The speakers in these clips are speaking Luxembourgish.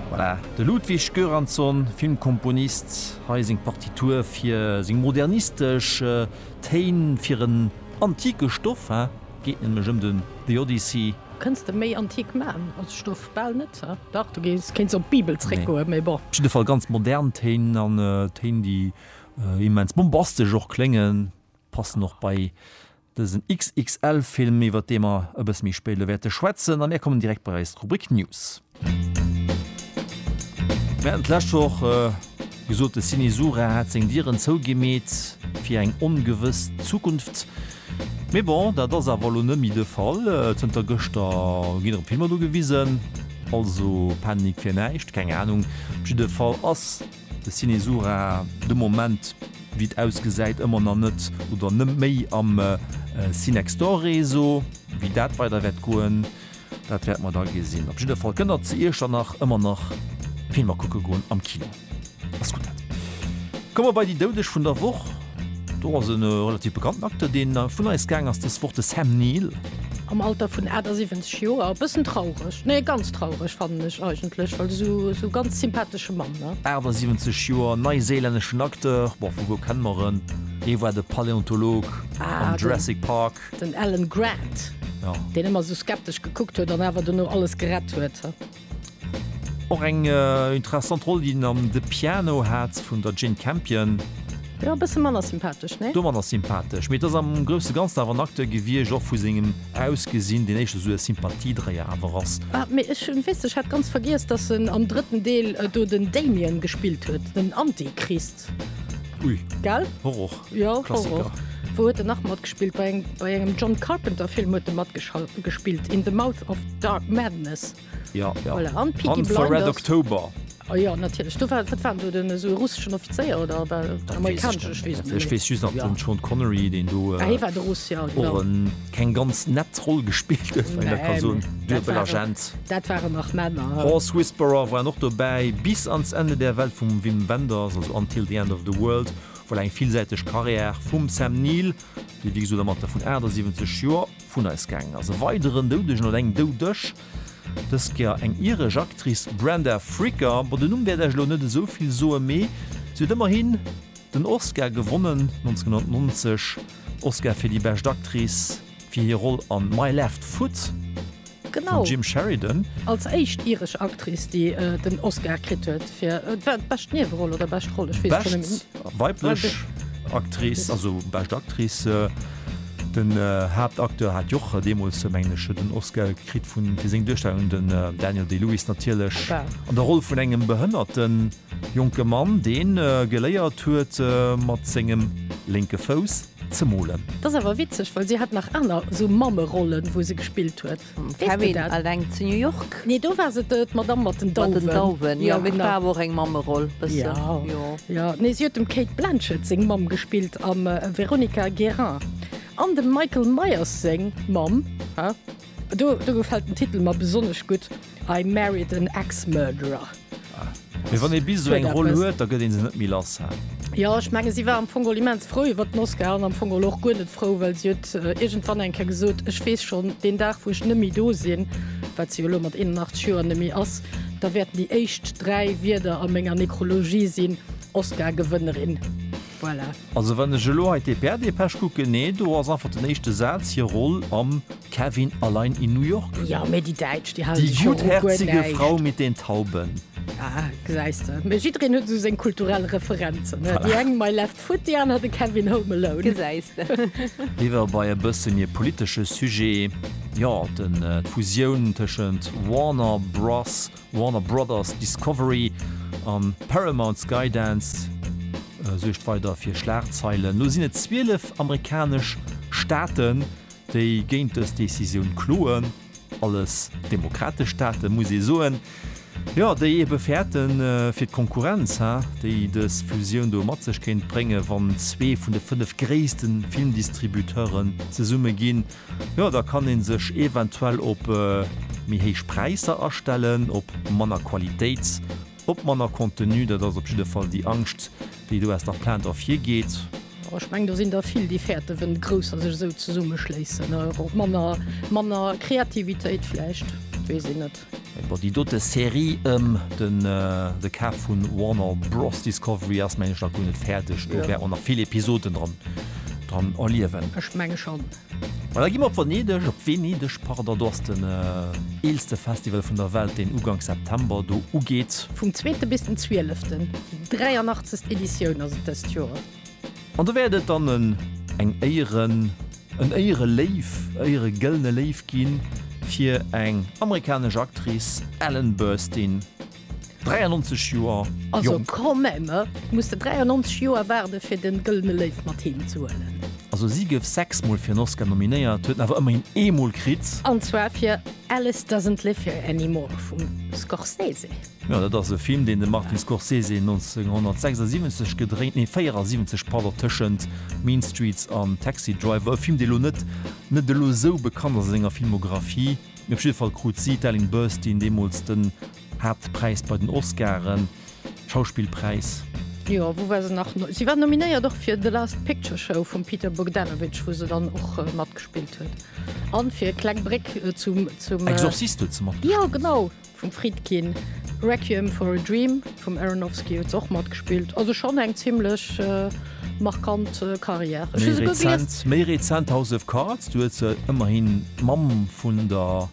Voilà, de Ludwig Göransson, Filmkomponist, hei seng Partitur fir seng modernistesch Téin fir en antike Stoff, he geet nämlech ëm den The Odyssey. Kënns de méi antik man als Stoff? Bal net, he? Dach, du kéints op d'Bibel zréckgoen, mee bon. Op jidde Fall ganz modern Téin, an Téin, déi immens bombastesch och kléngen, passen och bei. Dësen XXL-Film, iwwert dee mer e bësse méi spéit elo wäerte schwätzen. A mir kommen direkt bei eis Rubrik News. Mir haten d'lescht Woch gesot, de Cinesura hätt seng Dieren zougemeet fir eng ongewëss Zukunft. Mee bon, dat ass awer elo net méi de Fall. Zënter gëschter ginn erëm Filmer do gewisen. Also Panik fir näischt, keng Anung. Op jidde Fall ass De Cinesura, de Moment, wéi et ausgesäit, ëmmer nach net oder net méi am Cinextor-Réseau. Wéi dat weider wäert goen, dat wäerte mer da gesinn. Op jidder Fall kënnt Der zu Iechternach ëmmer nach Filmer kucke goen am Kino. Ass gutt. Da komme mer bei déi Doudeg vun der Woch. Do ass e relativ bekannten Acteur, dee vun eis gaang ass dës Woch, de Sam Neill. Am Alter vun 78 Joer. E bëssen traureg, nee ganz traureg fannen ech eigentlech, well esou ganz sympatesche Mann, ne? 78 Joer, neiséilänneschen Acteur, bon vu wou kenne mer en? E war de Paläontolog am Jurassic Park. Den Alan Grant, deen ëmmer esou skeptesch gekuckt huet an awer dono alles gerett huet. Och eng interessant Roll déi en am The Piano hat vun der Jane Campion. Jo, e bësse manner sympathesch, nee? Do manner sympathesch, mee et ass am grousse Ganzen awer en Acteur gewiescht, och vu sengem Ausgesinn, deen éischter esou e Sympathiedréier awer ass. Ah, mee ech weess, ech hat ganz vergiess, dass en am drëtten Deel do den Damien gespillt huet, den Antichrist. Art. Ui. Gell? Horror. Jo, Horror. Wou huet en nach matgespillt? Bei engem, bei engem John Carpenter Film huet en matgespillt, In the Mouth of Dark Madness. Ja, ja. Voilà. An Peaky Blinders. Hunt for Red October. Oh ja, natierlech. Du war, wat war do den esou russeschen Offizéier oder war amerikanesch? Ech weess just nach den Sean Connery, deen do. Ah, hie war de Russ, ja, genau. keng ganz nett Roll gespillt huet, wann een dat ka soen, duebel Agent. Dat waren nach Männer. Horse Whisperer waren och dobäi. Bis ans Ende der Welt vum Wim Wenders, also Until the End of the World, voilà eng villsäiteg Karriär vum Sam Neill, dee wéi gesot am Alter vun 78 Joer vun eis gaangen ass. E weideren Doudegen oder eng Doudesch, dës Kéier eng iresch Actrice, Brenda Fricker. Bon, den Numm wäert Iech elo net esou vill soen, mee si huet ëmmerhin den Oscar gewonnen 1990. Oscar fir déi bescht Actrice fir hir Roll an My Left Foot vum Jim Sheridan. Genau, als éischt iresch Actrice, déi den Oscar kritt huet fir bescht Nieweroll oder bescht Roll, ech weess et schonn net méi. Bescht weiblech Actrice, also bescht Actrice, den Haaptacteur hat jo och deemools, mengen ech, den Oscar kritt fir seng Duerstellung, den Daniel Day-Lewis natierlech an der Roll vun engem Behënnerten. Jonke Mann deen geléiert huet mat sengem lénke Fouss ze molen. T'ass awer witzeg, well si hat nach aner sou Mammerollen wou se gespillt huet. Mam Kevin alleng zu New York? Nee do war se d'Madame mat den Dauwen. Mat den Dauwen jo, mee war awer och eng Mammeroll bëssen jo. Jo nee si huet dem Cate Blanchett seng Mamm gespillt am Veronica Guerin an dem Michael Myers seng Mamm. Do gefällt den Titel mer besonnesch gutt. I Married an Ex-Murderer. Mee wann ee bis esou eng Roll huet, da gëtt ee se net méi lass, hä? Jo, ech mengen, si war am Fong geholl immens frou iwwert den Oscar an am Fong geholl och guer net frou, well si huet iergendwann eng Kéier gesot, Ech weess schonn, deen Dag, wou ech net méi do sinn, wat si jo elo mat 81 Joer net méi ass, da wäerten déi éischt dräi Wierder a menger Nekrologie sinn, Oscar-Gewënnerin. Voilà. Also wann ech elo hei d'EPR-Dépêche kucken, nee, do ass einfach den éischte Saz, hir Roll am Kevin allein in New York. Jo, mee déi Däitsch, déi hale Die sech jo och guer gutherzige näischt. Frau mit den Tauben. Ah, gesäis de. Mee jiddereen huet esou seng kulturell Referenzen, ne? Déi eng My Left Foot, déi aner de Kevin Home Alone. Gesäis de. Liewer bei e bësse méi politesche Sujet, jo, den, d'Fusioun tëschent Warner Bros. Warner Brothers Discovery a Paramount Skydance suergt weider fir Schlagzeilen. Elo sinn et 12 amerikanesch Staaten, déi géint dës Decisioun kloen. Alles demokratesch Staaten, muss ee soen, jo, déi ebe fäerten, fir d'Konkurrenz, déi dës Fusioun do mat sech kéint bréngen, wann zwee vun de fënnef gréisste Filmdistributeuren zesumme ginn, Jo, da kann een sech eventuell op méi héich Präisser astellen, op manner Qualitéit, op manner Contenu. Dat ass op jidde Fall déi Angscht, déi do aus der Plainte ervirgeet. Jo, ech mengen, do sinn der vill, déi fäerten, wenn d'Grousser sech esou zesummeschléissen. Manner Kreativitéit vläicht, weess een net. Bon, déi dote Serie ëm den de Kaf vu Warner Bros Discovery ass meng ech nach guer net fäerdeg. Do gär och nach vill Episoden dran dran erliewen. Ech menge schonn. Mä da gi mer op Venedeg, op Venedeg, pardon. Do ass den eelste Festival vun der Welt, deen uganks September do ugeet. Vum zweete bis den zwieleften. Déi 83. Editioun ass et dëst Joer. An do wäert et dann en, eng Éieren, en Éiereléiw, Éieregëllene Léiw gi fir eng amerikanesch Actrice, Ellen Burstyn, 93 Joer Also jonk. quand même, muss de 93 Joer waarde fir de Gëllene Léiw mat heem ze huelen. Also si gouf sechs Mol fir en Oscar nominéiert, huet en awer ëmmerhin ee Mol kritt. An zwar fir Alice Doesn't Live Here Anymore vum Scorsese. Jo, dat ass e Film, deen de Martin Scorsese 1976 gedréint, nee 74, pardon, tëschent Mean Streets an Taxi Driver. E Film, dee elo net net elo esou bekannt ass a senger Filmographie, mee op jidde Fall krut si, d'Ellen Burstyn, deemools den Haaptpräis bei den Oscaren, Schauspillpräis. Jo, wou war se nach? Si war nominéiert och fir The Last Picture Show vum Peter Bogdanovich, wou se dann och matgespillt huet, an fir Kleng Bréck zum, zum. Exorcist huet se matgespillt. Jo, genau. Vum Friedkin, Requiem for a Dream vum Aronofsky huet se och matgespillt. Also schonn eng zimmlech markant Karriär. Ech hu se guer gelies. Méi rezent House of Cards, do huet se ëmmerhi d'Mamm vun der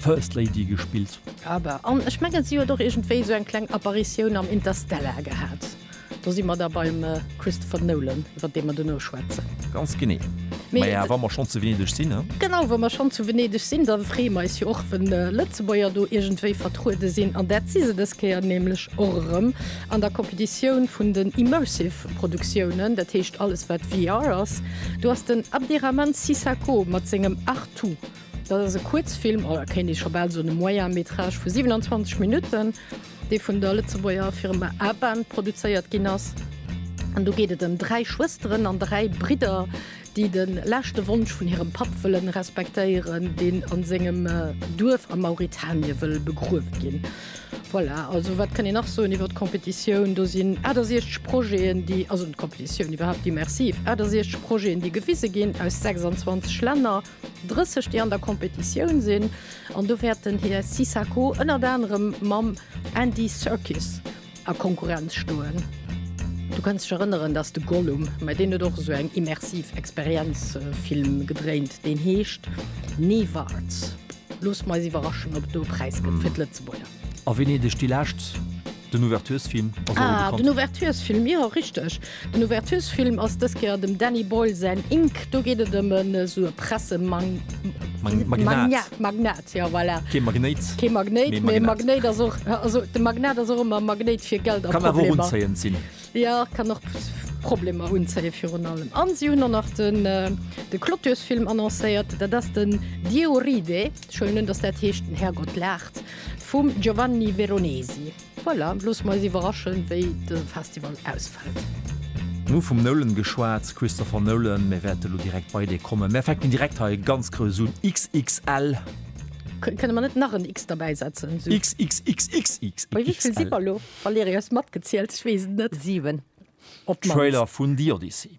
First Lady gespillt. Aber, an ech mengen si huet och iergendwéi esou eng kleng Apparitioun am Interstellar gehat. Do si mer da beim Christopher Nolan, iwwer dee mer duerno schwätzen. Ganz genee. Ma jo, wa mer schonn zu Venedeg sinn, ne? Genau, wa mer schonn zu Venedeg sinn, da freeë mer eis jo och, wë Lëtzebuerger do iergendwéi vertruede sinn. An dat si se dës Kéier nämlech och erëm an der Competitioun vun den Immersive Produktiounen, dat heescht alles, wat VR ass. Do ass den Abdirahman Sissako mat sengem Artoo, dat ass e Kuerzfilm, oder kéint ee scho bal soen e Moyen-métrage vu 27 Minutten, dee vun der Lëtzebuerger Firma Aban produzéiert ginn ass. An do geet et ëm dräi Schwësteren an dräi Bridder, déi de leschte Wonsch vun hirem Papp wëllen respektéieren, deen a sengem Duerf a Mauritanie wëll begruewe ginn. Voilà, also wat kann een nach soen iwwer d'Competitioun? Do sinn 68 Projeten, déi, also d'Competitioun iwwerhaapt, immersiv, 68 Projeten, déi gewise ginn, aus 26 Länner. 30 déi an der Competitioun sinn an do wäert den Här Sissako ënnert anerem mam Andy Serkis a Konkurrenz stoen. Du kanns dech erënneren, dass de Gollum, mä deen huet och esou eng immersiv Experienz Film gedréint, deen heescht Nevarts. Loosse mer eis iwwerraschen, ob do e Präis gëtt fir d'Lëtzebuerger. A Venedeg déi lescht Den Ouverturesfilm ass och bekannt. Ah, den Ouverturesfilm, jo, richteg. Den Ouverturesfilm ass dës Kéier dem Danny Boyle säin Ink. Do geet et ëm esou e Pressemagn. Magnat. Magnat, Magnat, jo, voilà. Kee Magnéit. Kee Magnéit, mee e Magnat. Magnéit ass och, also de Magnat ass och ëmmer e Magnéit fir Geld a Problemer. Kann awer och unzéiend sinn. Jo, kann och Problemer unzéien, virun allem. An si hunn och nach den, de Clôturesfilm annoncéiert, dat ass den Dieu ride. Ech huelen un, dass dat heescht, den Härgott laacht. Vum Giovanni Veronesi. Voilà, loosse mer eis iwwerraschen, wéi dëse Festival ausfält. Mir hu vum Nolan geschwat, Christopher Nolan. Mir wäerte lo direkt bei dee kommen. Mir fänken direkt hei ganz grouss un, XXL. Kënne mer net nach en X derbäi setzen? XXXXXXXL. Bei wéi vill si mer elo? Valérie, hues matgezielt? Ech weess et net. Siwen. Trailer vun The Odyssey.